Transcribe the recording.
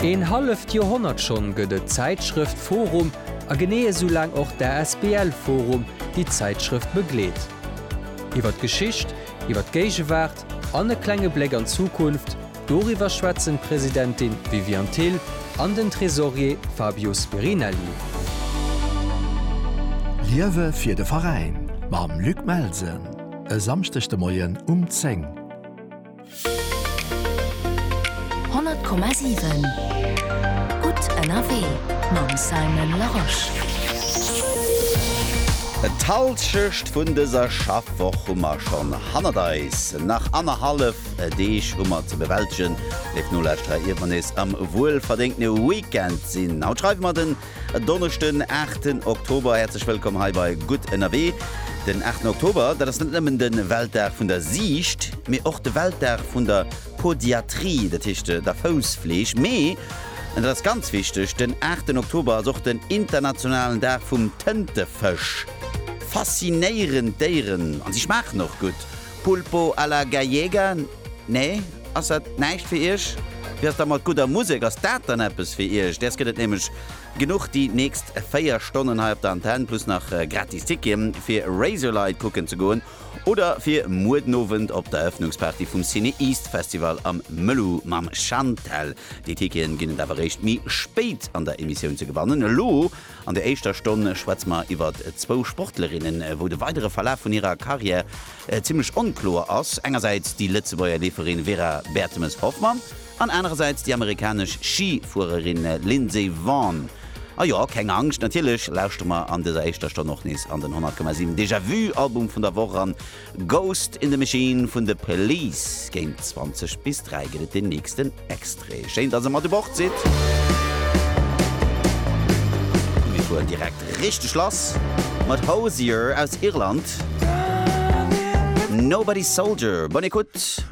Een halleft Joerhonnert schonn gëtt et d'Zäitschrëft forum a genee esou laang och d'ASBL forum, déi d'Zäitschrëft begleet. Iwwer d'Geschicht, iwwer d'Géigewaart an e klenge Bléck an d'Zukunft, doriwwer schwätzen d'Presidentin Viviane Thill an den Tresorier Fabio Spirinelli. Liewe fir de Veräin mam Luc Melsen e Samschdeg de Moien um 10. 100,7 Gutt ënnerwee mam Simon Larosche. D'Halschecht vun dëser Schaffwoch hu mer schonn hannert eis. Nach annerhallef Deeg hu mer ze bewältegen, léif Nolauschterer, iert mer nees am wuelverdéngtene Weekend sinn. Haut schreiwe mer den E Donneschden, aachten Oktober. Häerzlech wëllkomm hei bei Gutt ënnerwee. Den aachten Oktober, dat ass net nëmmen de Weltdag vun der Siicht, mee och de Weltdag vun der Podiatrie, dat heescht der Foussfleeg. Mee, an dat ass ganz wichteg, den aachten Oktober ass och den internationalen Dag vum Tëntefësch. Faszinéierend Déieren, a si schmaachen och gutt. Pulpo a la Gallega, nee? Ass dat näischt fir Iech? Wéi ass da mat gudder Musek? Ass dat dann eppes fir Iech? Däers gëtt et nämlech genuch déi nächst 4 Stonnen hei op der Antenn, plus nach gratis Tickete fir Razorlight kucken ze goen oder fir muer den Owend op der Erëffnungsparty vum CineEast Festival am Mëlou mam Chantelle. Déi Ticketen ginn et awer réischt méi spéit an der Emissioun ze gewannen. Elo. An der éischter Stonn schwätze mer iwwer zwou Sportlerinnen, wou de weidere Verlaf vun hirer Karriär zimmlech onkloer ass. Engersäits déi Lëtzebuerger Leeferin Vera Bertemes-Hoffmann an anerersäits déi amerikanesch Schifuererin Lindsey Vonn. A jo, keng Angscht, natierlech lauschtere mer an dëser éischter Stonn och nees an den 100,7 Déjà-vu-Album vun der Woch eran. Ghost in the Machine vun The Police. Géint 20 bis 3 gëtt et den nächsten Extrait. Schéin, dass e mat u Bord sidd. Mir fueren direkt richteg lass mat Hozier aus Irland. Nobody Soldier. Bonne écoute!